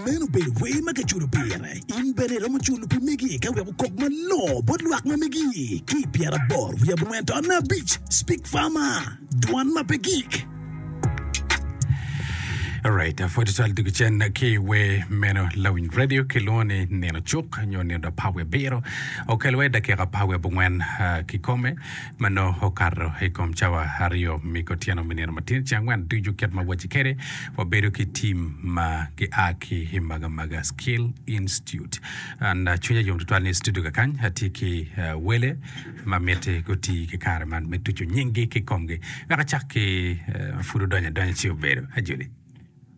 Meno obedo wer ma kiculo pire. In bene iromo culo pi megi ka wek okok malongo bot lwak ma megi. Ki i pyeraboro wiye abongwen to anne abic, Speak Farmer, Dwan ma pe gik. Alright, apwod tutwal dog cen ki wer meno lawiny radio kilwongo ni nino cuk nyo nino da par wiye abiro okelwa i dakika par wiye abongwen ah, kikome ma nongo okato i kom cawa aryo me kutyeno me nino matir ca angwen ducu kit ma wacci kwede, wabedo ki tim ma gia ki i Magamaga Skill Institute. An cwinya yom tutwal ni i studio kakany atye ki wele ma miti guti ki kare man me tuco nyinggi ki komgi wek acak ki pud odonyo adonya ci obedo. Ajoli.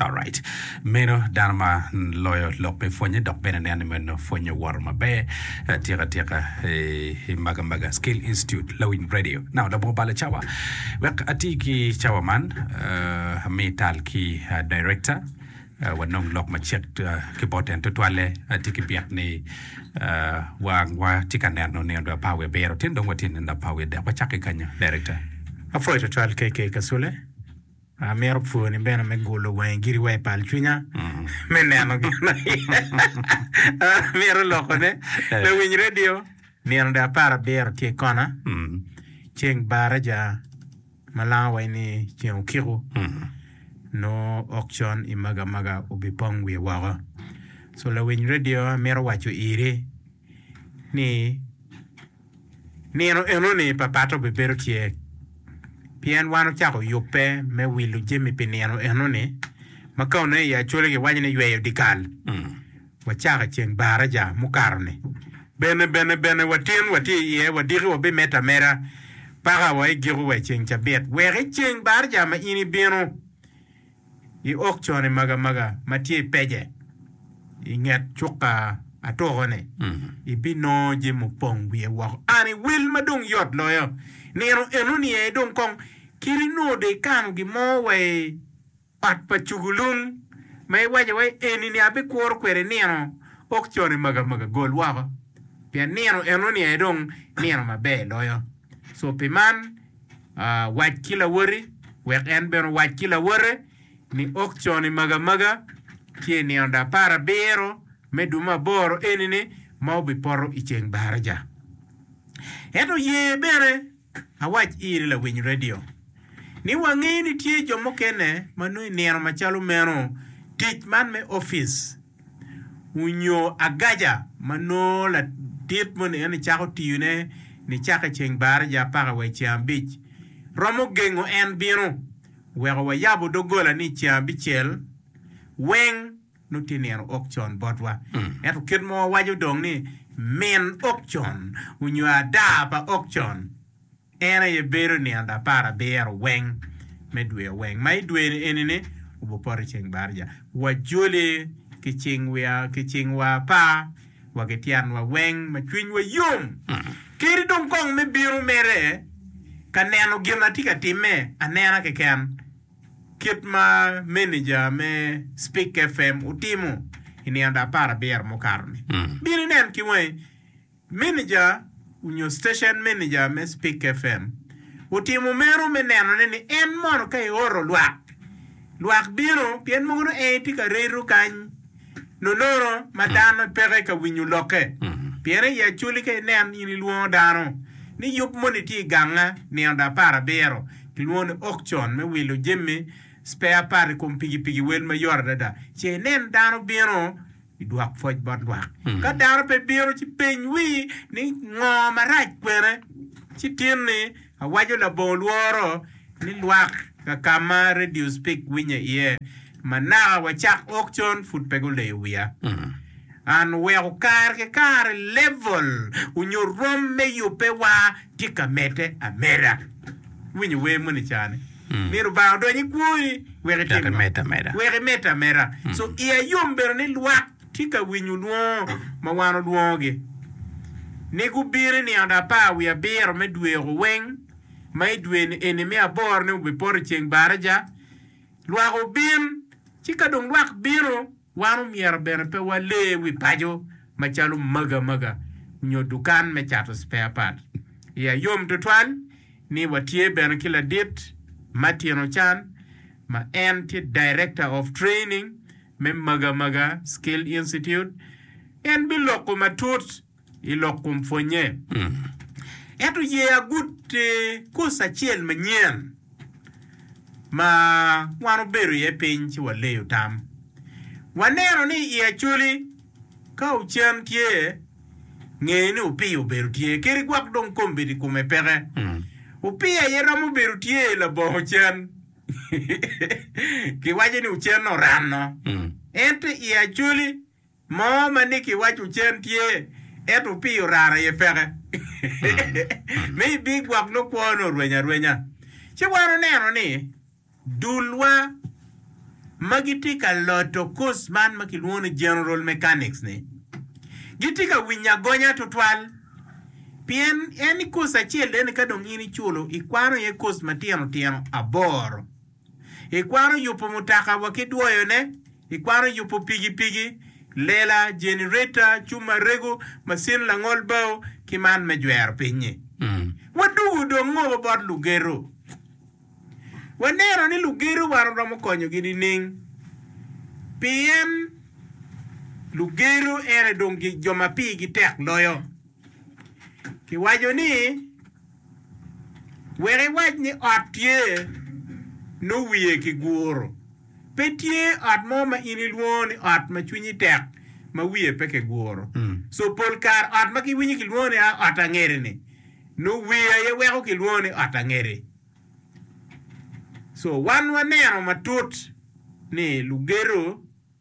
Alright. Meno dano ma loyo lok pe pwonye dok bene neno ni meno pwonye owoto maber. Atika atika eh, maga maga Skill Institute Lawiny Radio. Now labongo bala cawa. Wek ati ki cawa man eh, ami tal ki ah, director eh, wanong lok macek eh, ki bot en tutwalle ati ki byek ni eh, wa wa ti ka neno ni onongo apa wiye biro tin dong watye neno apa wiye dek wacakki kanyo director. Apwoyo tutwal KK Kasule. Amito pwoni bene me gulo wangi giri wa i pal cwinya me neno gin ma amito lokone me winy radio. Nino de apar abiro tye kona, ceng baraja ma lango wa ni ceng okiko nongo ok con i maga maga obipong wiye woko. So lawiny radio amito waco iri ni. Nino enoni papatte obibedo tye, pien wan ocako yubbe me wilo jami pi nino enoni, ma ka onongo i Acholi giwaco ni yweyo dyekal, wacako i ceng Baraja mukato-ni. Bene, bene, bene, watin watye iye, wadiki wabimedde ameda paka wa i giko wa i ceng Cabit, wek i ceng Baraja ma in ibino, I ok cone magamaga ma tye i pejje i nget cuka atuko-ni, ibinongo jami opong wiye woko. An i wel ma dong yot loyo nino enoni aye dong kong kadi nongo dong ikano gin mo wa i ot pa cugulung ma iwaco wai eni-ni abikuro kwede nino, ok cone magamaga gol woko pien nino enoni aye dong nino maber loyo. Co pi man. Wac ki lawoti, wek en bene owac ki lawote ni, 'Ok con imagi amaga, ci i nino dapar abiro me dwe me aboro eni-ni ma wubipoto i ceng baraja. Ento ye bene awac iri lawiny redio, ni wangeyo ni tye jo mukene ma nongo i nino macalo meno tic man me opic onyo agaca ma nongo ladit moni en ni cako tiyo ne ni cako i ceng baraja apaka wa i ceng abic romo gengo en bino weko wa yabo dogola ni i ceng abicel weng nongo tye nino ok con bot wa ento kit ma wa waco dong ni min ok con onyo ada pa ok con. En aye bedo nino lapar abiro weng me dwe oweng, ma i dwe eni-ni obupoto i ceng barija. Wajoli ki cing wiya, ki cing wa apa, wa ki tyen wa weng, ma cwiny wa yom kedi dong kong me bino mere ka neno gin atye ka time anena keken, kit ma meneja me Spik FM otimo i nino lapar abiro mukato-ni. Bino inen ki wangi. Meneja onyo station meneja me Spik FM otimo meno me neno ne ni en mono ka eoto lwak, lwak bino pien mogo nongo en etye ka reto kany nonono ma dano peke ka winyo loke. Pien aye acoli ka inen in ilwongo dano ni yub moni tye iganga nino da apar abiro kilwongo ni auction me wilo jemi spare part ikom pigipigi wel mayot adada ce inen dano bino I dwok pwoc bot lwak, ka dano pe bino, ci peny wii ni ngo marac kwene? Ci tin ni awaco labongo lworo ni lwak kakama radio speak winye iye ma naka wa cak ok con pud pe guleyo wiya. An oweko kare ki kare level onyo rom me yubbe wa tye ka mede ameda. Iwinyo wer moni cani? Myero Lubanga odony i kwoni wek itim ngo? Wek imedde ameda. So iya yom bedo ni lwak tye ka winyo lwongo ma wan olwongogi ni gubin i nino apar wiye abiro me dwe oko weng, ma i dwe eni me aboro-ni wubipoto i ceng baraja. Lwak obin, ci ka dong lwak bino, Wan omyero bene pe wale wi paco macalo magamaga nyo dukan me cato spare part. Iya yom tutwal ni watye bene ki ladit, Martino Chan, ma en tye Director of Training me Magamaga Skill Institute. En biloko matut i lok kom pwonnye. Ento ye agute kos acel manyen ma wan obedo iye piny ci waleyo tam. Waneno ni i Acholi, ka ocen tye, nge ni opiya obedo tye keri gwok dong kombedi kome peke. Opiya aye romo bedo tye labongo ocen. Kiwaco ni ocen oranno. Ento i Acholi. Mo ma ni kiwaco cen tye, ento pi orara aye peke. Me i big gwok nongo kwone orweny arwenya. Ci wan oneno ni dulwa ma gitye ka loto kos man ma kilwongo ni General Mechanics ni gitye ka winyo agonya tutwal pien en ni kos acel eni ka dong in iculo ikwano iye kos matino tino aboro. Ikwaro yubo mutoka wa ki dwoyone? Ikwaro yubo pigipigi, lela, jenereta, cub ma rego, macin langol bao, ki man me jwero piny-nyi? Wadugo dong ngobo bot lugedo. Waneno ni lugedo wan waromo konyogi nining? Pien lugedo en aye dong jo ma pigi tek loyo. Kiwaco ni. Wek iwac ni ot tye, nongo wiye kiguro. Pe tye ot mo ma in ilwongo ni ot ma cwinyi tek ma wiye pe kiguro. So pol kare ot ma giwinyo kilwongo ni ot angede-ni, nongo wiye aye weko kilwongo ni ot angede. So wan waneno matut ni lugedo.